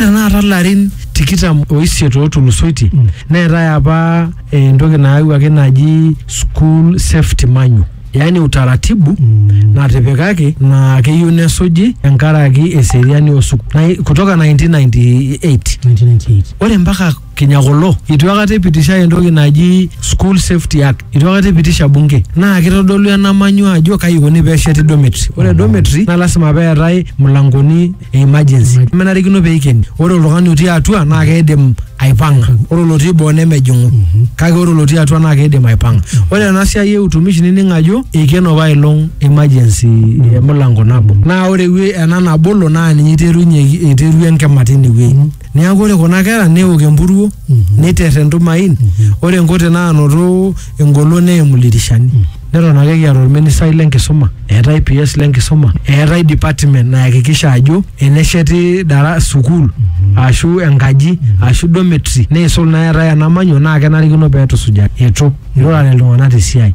Tenakata larin tikitam oisiet ootulusoitie neetae apa eh, entoki naayawuaki naji school safety manual yaani utaratibu natipikaki naa keyieu nesuji enkaraki eseriani osuk na, kutoka 1998 1998 ore mpaka Kenya kulo itu akata ipitishae entoki naji school safety act itu akata ipitisha bunge naa kitodolu ena manyu ajo kai ikoni pesheti dormitory ore dormitory naa lasima peetae mlangoni e emergency menarikino peikeni ore oltung'ani otii atua naa keidim aipang'a ore olotii boo nemejing'u kake ore olotii atua naa keidim aipang'a ore ena siai e utumishi nining ajo eikeno apailong emergency emilango nabo naa ore ewue- ena nabolo naa ninye iterunyeki iterua enkima tinewuei Neaku ore kuna kera neok empuruo neiter entumain ore enkote naanoto engolon neimu ildirishani. Neton ake kiata olministai le nkisuma, eetae PS le nkisuma, eetae department nayakikisha ajo enesheti dara sukuul aashu enkaji aashu dormitory neisul naa eetae enamanyo naa kenarikino pee etusujari. Eitu. Eitu eirurare iltung'ana te siai.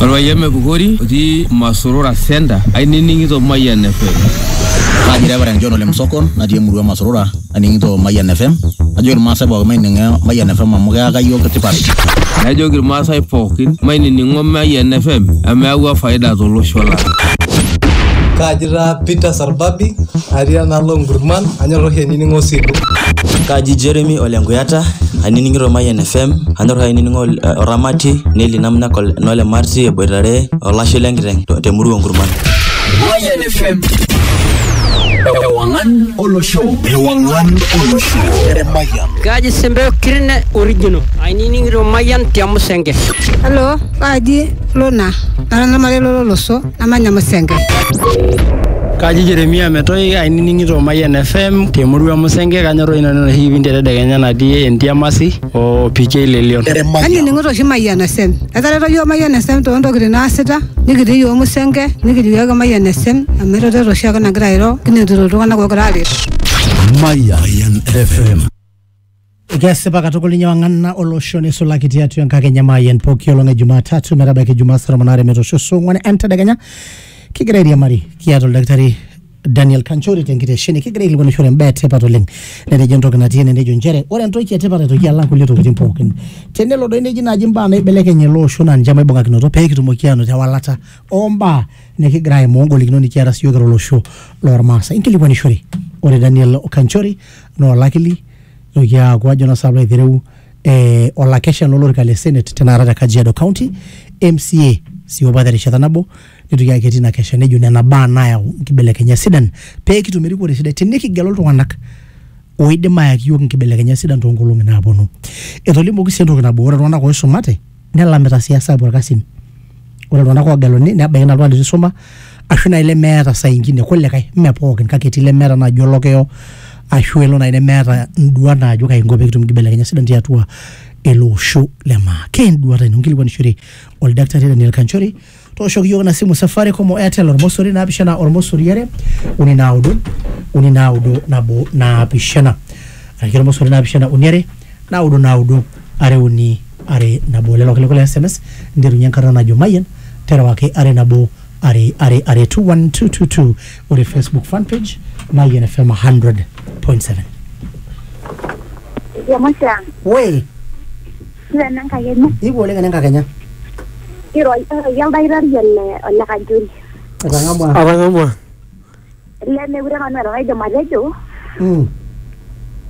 Orpayian Mepukori otii Masorora Center ainining'ito Mayian FM. Kaji Reverend John Ole Msokon natii emurua Masorora aning'ito Mayian FM. Ajoki Irmaasai pookin maining'o Mayian FM amu keyaka iyiook tipat. Najoki Irmaasai pookin mainining'o Mayian FM amu eyawua faida tolosho lang'. Kaji taa Peter Arbabi atii enaalo Nkurman anyor oshi ainining'o Osilu. Kaji Jeremy ole Nkuyata ainining'ito Mayian FM anyor oshi ainining'o Oramati Neli Namnak nole Marti eboitare olashe le nkiteng te murua Nkurman. Mayian FM. Ewangan olosho. Ewangan olosho. Mayian. Kaji Sembeo Kirine original. Ainining'ito Mayian te Musenge. Hello, kaji Lona. Nara namare lolo loso. namanya Musenke. Kaji Jeremia Metoi ainining'ito Mayian FM te murua Musenge kanyorroyu nanu enoshi kipindi e tedekenya natii Entiamasi o PK Lelion. Anining'ito oshi Mayian FM. Etareto iyiook Mayian FM too ntokitin naasita nikitii iyiook Musenge nikijo iyiook ake Mayian FM amu eretoto oshiake nagira airo kinotito iltung'anak oogira aaret. Mayan FM. Kesipa katukul ninye wang'ana olosho neisulaki tiatua enkakenya maayen pooki olong e Jumatatu metabaiki Jumaa saa tomon aare metoosho saa ong'wan entedekenya kigira airiamari kiata oldakitari Daniel Kanchori tenkitesheni kigira aikilikuanishore imbaa etipat oleng netejo entoki natii ene nejo inchere ore entoki etipat aitoki alang kulie tokitin pookin tenelo doi neji naaji imbaa naibelekeny ele osho naa ninche maibung'akinoto pee kitumoki aanoto ewalata ombaa nikigira aimaa ongolikinot nikiata siyiok kira olosho lormaasai inkilikuanishore ore Daniel Kanchori naa olakili nitoki aaku ajo naa sabu aitereu eh, olakesha lolorika le senate tenakata te kajiado county mca sii opa terishata nabo nitoki ake etii ina kesha nejo nena baa naayau nkibelekenyat sidan pee kitum erikore sidai tinikigelu iltung'anak oidim ayaki yiok nkibelekenyat sidan toonkolong'i naaponu etolimuoki sii entoki nabo ore iltung'anak oisumate nelamita sii esabu orkasin ore iltung'anak oogeluni nebaiki naa oltung'ani litu isuma ashu naaji lemeeta saa ingine kulikae mme pookin kake etii lemeeta naaji olokiyo ashu elo naaji nemeeta induat naajo kaji inko pekitum inkibelekenyat sidan tiatua ele osho le maa keenduata ino inkilikuanishore oldakitari Daniel Kanchori. tooshoki iyiook ina simu safaricom o airtel ormosori naapishana ormosori are uni naudo uni naudo nabo naapishana araki ormosori naapishana uni are naudo naudo are uni are nabo lelo kilikuai le sms nterunye enkarna najo mayian terewaki are nabo are are are 21222 ore facebook fan page mayian fm 100.7 Ejo Moshiang, woi Ore enenkakenya. Ipu oleng enenkakenya. Iroi iroi oldakitari ole ole Kanchori. Etang'amua. Atang'amua. Ele mekure nanu eeta enaidim atejo. Mm.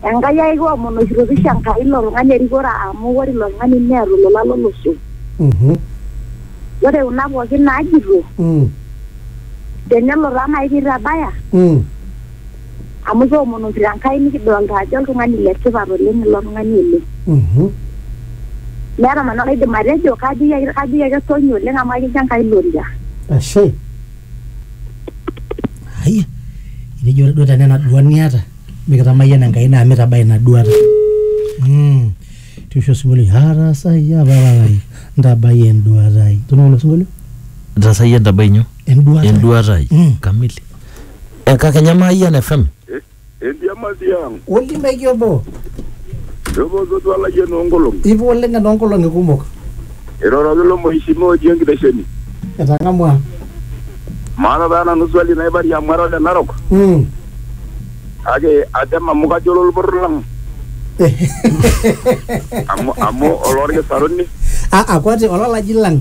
Enkai ai kiomonoshito pisho Enkai ilo tung'ani erikore amu ore ilo tung'ani neeta olola lolosho. Mhm. Ore kuna pookin naajito Mm. tenelo taa nai pitabaya Mm. Amu kiomonokito Enkai nikidolta ajo oltung'ani le tipat oleng ilo tung'ani oleng. Mhm. Meeta nanu enaidim atejo, kajoki ake kajoki ake song'i oleng amu akincho Enkai ilo oria. Ashe. Ai, etejo ore duo tenaa ena duat niata, mikitamayian Enkai naa mitabaya ina duata. Mm. Tiosho osinkolio, atasayia papa lai, ntabai enduata ai. Toning'o ilo sinkolio? Ntasayie ntabai nyoo? enduata enduata ai Mm. kamili enkakenya maayian fm Entiamati ang, olimeki obo eposotua layieni oonkolong'i. ipa oleng enoonkolong'i kumok Iroroki ilo mheshimiwa otii enkitesheni. etang'amua Maata taa nanu swali naibarie amu ara ole Narok. Mm. Kake atem amu kajo ololporor lang. Amu, amu olorkisaruni. Ah, ah, kwati olalaji lang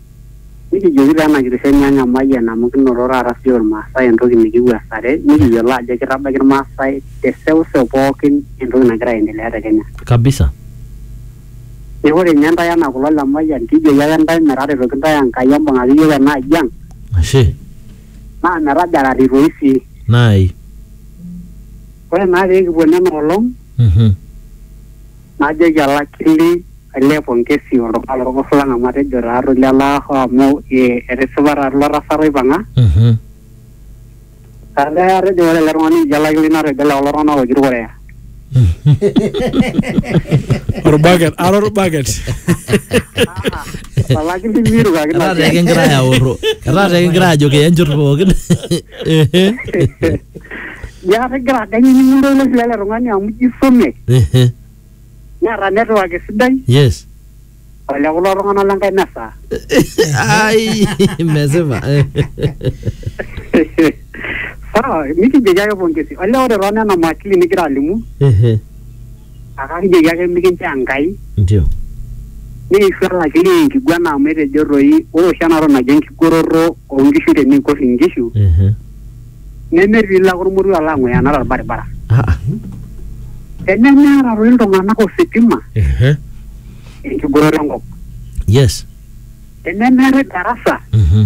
Nikijoki taa ena kitesheni ang emayian amu kinoto taata sii Ilmaasai entoki nikiwuasare nikiyiolo ajo kitabaiki Ilmaasai te seuseu pookin entoki nagira aendelea te Kenya. Kabisa. Neeku ore ninye intae enaa kulo le Mayian kijoki ake intae metaretoki intae Enkai embung'aki iyiook ena aji ang Ashe. naa metajarrari toi sii. Naai. Ore naa pee kipuo nena olong Mhm. Najoki olakili olee pongesi oltung'ani lorgos lang amu atejo taa toi lelaa hoo amu eh, etisipa taa ilo tasat oipang'a. Mhm. Olee atejo ore ele tung'ani lijo olakili natejo ole kulo tung'anak ooji irkoreya. Orbaket, ara orbaket. Olakili mirukaki Etaa tee kigira aoro. Etaa tee kigira ajo kiya njot pookin. Ehe. Ya kegira aganya ninye ilo sila ele tung'ani amu ijo isome Ehe. neeta network sidai Yes. ole kulo tung'anak le nkae mesa. Ai, mesipa. Sawa, nikijoki ake pongezi. Ole ore too nena maakili nigira alimu Ehe. Kake kijoki ake mikinchoo Enkai Ndio. nikiishu olakili e nkiguana amu etejo toi ore oshi ena toki naji enkigoroto oo nkishu tenikor inkishu Ehe. neme piilo ake olmoruo alo ang'ueyana tolbaribara. Ah, ah. Tenemeeta toi iltung'anak ositima Ehe. enkigoroto enkop. Yes. Tenemeetae darasa Mhm.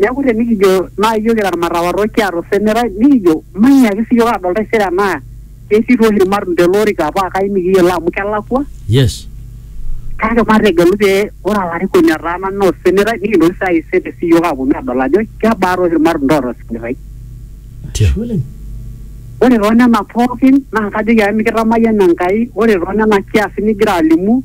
Neaku tenikijo naa iyiok kira ilmatawarrok kiata osemerai nikijo mainyiaki sii iyiook aadol taisere enaa ketii toi oshi ilmatunda ele orika paa kayieu nikiyiolo amu kelakua Yes. kake mategelu pee ore olarikoni otaana naa osemerai nikintoki sii aayie sere sii iyiook aaponu aadol ajo kebaa toi oshi ilmatunda oota osemerai. Ashe oleng. Ore too nena pookin naa kajoki ake mikitamayiana Enkai ore too nena kiasin nigira alimu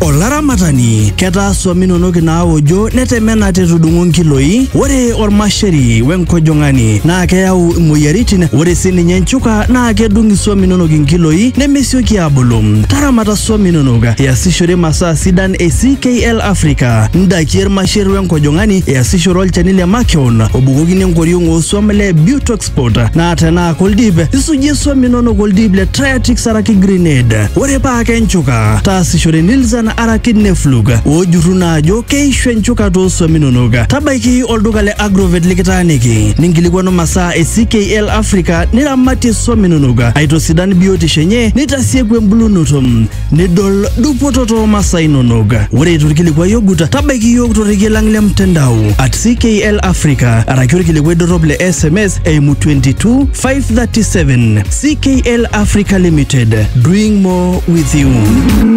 Olaramatani, ketaa swam inonok inaaojo netemena tetudung'o nkiloi. Ore olmasheri wenkojong'ani naa keyau imoyiaritin. Ore sii ninye nchuka naa kedung iswam inonok inkiloi nemesioki aabulu. Taramata swam inonok iasishore masaa sidan e CKL Africa, ndaiki e lmasher wenkojong'ani, iasishore olchani le makeon obukokini enkoriong oo swam le Butox passport naa tenaa koldip isujie swam inonok oldip le Triatix araki Grenade. Ore paa kenchuka taasishore Nilzan araki Neflug oojurru naa ajo keishu enchuka too swam inonok. Tabaiki olduka le Agrovet likitaaniki ninkilikwanu masaa e CKL Africa niramatie swam inonok aitosidan biotisho enye nitasieku embulunoto. nidol dupoto too masaa inonok. Ore torkilikuai ogut, tabaiki iyiook torrekie lang le mtandao at CKL Africa araki orkilikuai dorrop le SMS eimu 22537. CKL Africa Limited, doing more with you.